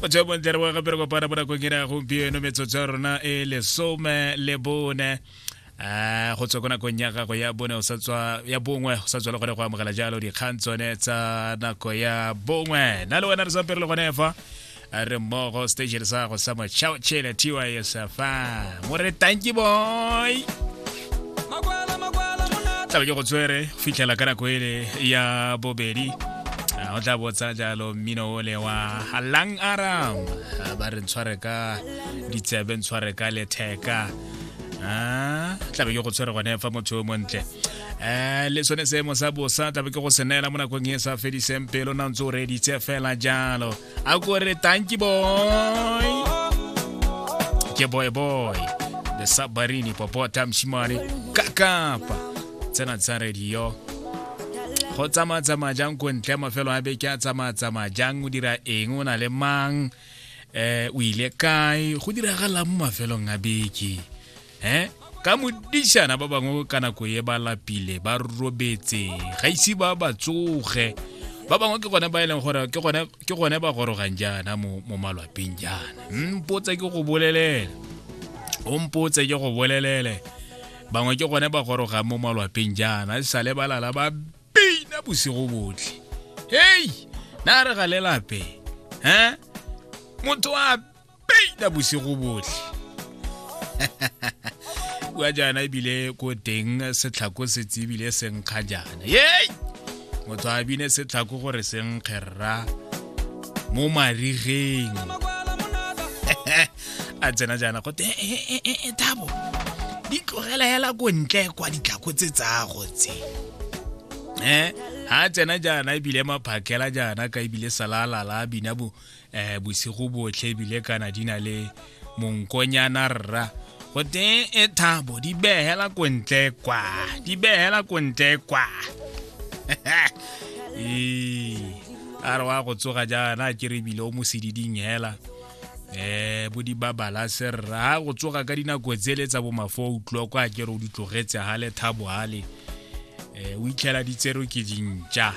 go tswa bontle re boga pere kopana mo nakong ena gompieno metsotso ya rona e lesome le bone um go tswa ko nakong ya gago ya bone ya bongwe go sa tswa le gone go amogela jalo dikgang tsone tsa nako ya bongwe na le wena re sa pere le gone fa re mmogo station sa go sa mochao chele tys fa mo re tanki boy tlabe ke go tswere fitlhela ka nako ele ya bobedi o tla botsa jalo mmino ole wa halang aram ba re ntshware ka ditsebe ntshware ka letheka tlabe ke go tshwere gone fa motho o montle um le sone seemo sa bosa tlabe ke go se neela mo nakong e sa fediseng pelo na ntse o reeditse fela jalo a ko re tanki boy ke boy boy the submarine popota mshimane kakapa tsena tsa radio go tsamaya tsamaya jang ko ntle mafelo a beke a tsamaya tsamaya jang o dira eng o na le mang um o ile kae go diragalang mo mafelong a beke um ka modišana ba bangwe ka nako ye ba lapile ba robetse ga ise ba ba tsoge ba bangwe ke gone ba e leng gore ke gone ba gorogang jaana mo malwapeng jaana mpotse ke go bolelele o mpotse ke go bolelele bangwe ke gone ba gorogang mo malwapeng jaana e sale ba lala ba bina bosigo botlhe hei na re ga lelape um motho a peita bosigo botlhe bua jaana ebile ko teng setlhako se tsebile senkga jaana yei motho a bine setlhako gore senkgerra mo marigeng a tsena jaana go te e, e, e, e thabo di tlogela hela ko ntle kwa ditlhako tse tsago tse um ha tsena jaana ebile maphakela jaana ka ebile salalala bina bo um bosigo botlhe ebile kana di na le monkonyana rra goteng e thabo di behela ko ntle kwa di behela ko ntle kwa ee a re wa go tsoga jaana ke re ebile o mo sediding hela um bo di babala serra ga go tsoga ka dinako tsele tsa bomafo utlwa kwa ke re o di tlogetse gale thabo gale um o itlhela di tserwe ke dintša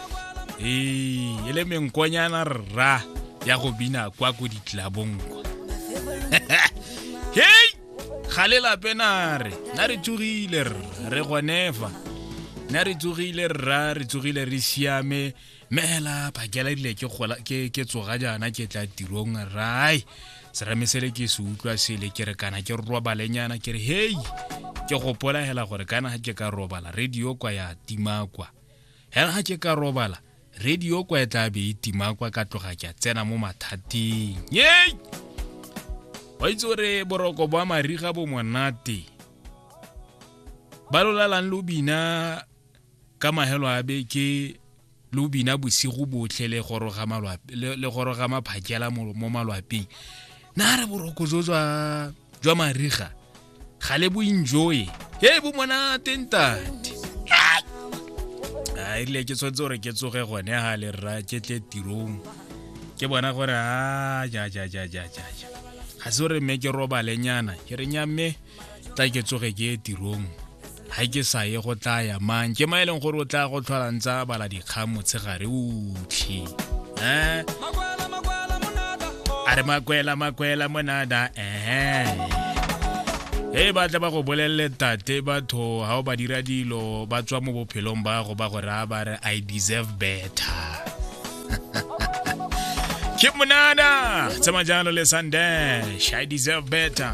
ee e le menkonyana rra ya go bina kwa ko ditlabong kwa hei ga le lape nare na re tsogile rra re gonefa na re tsogile rra re tsogile re siame meela phakela dile ke gola ke ke tsoga jana ke tla tirong rai serame sele ke se utlwa sele ke re kana ke robalenyana ke re hei ke gopola hela gore kana ga ke ka robala radio kwa ya tima kwa hela ga ke ka robala radio kwa e tla be e tima kwa ka tloga ke a tsena mo mathateng yei wa itse gore boroko bwa mariga bo monate ba lolalang lo bina ka mahelo a be ke lo bina bosigo botlhe le goroga malwape le goroga maphakela mo malwapeng na re boroko jo jwa jwa mariga ga le boenjoye he bo monate ntate a erile ke tshwanetse gore ke tsoge gone ga le rra ke tle tirong ke bona gore a ja ja ja ja ja ja ga se gore mme ke robalenyana ke re nya mme tla ke tsoge ke ye tirong ga ke sa ye go tla ya mang ke ma e leng gore o tla go tlholang tsa bala dikgang motshegare otlhe um a re makwela makwela monada um e ba tla ba go bolelele tate batho ga o ba dira dilo ba tswa mo bophelong ba go ba go raya ba re i deserve better ke monana tsema jalo le sundash i deserve better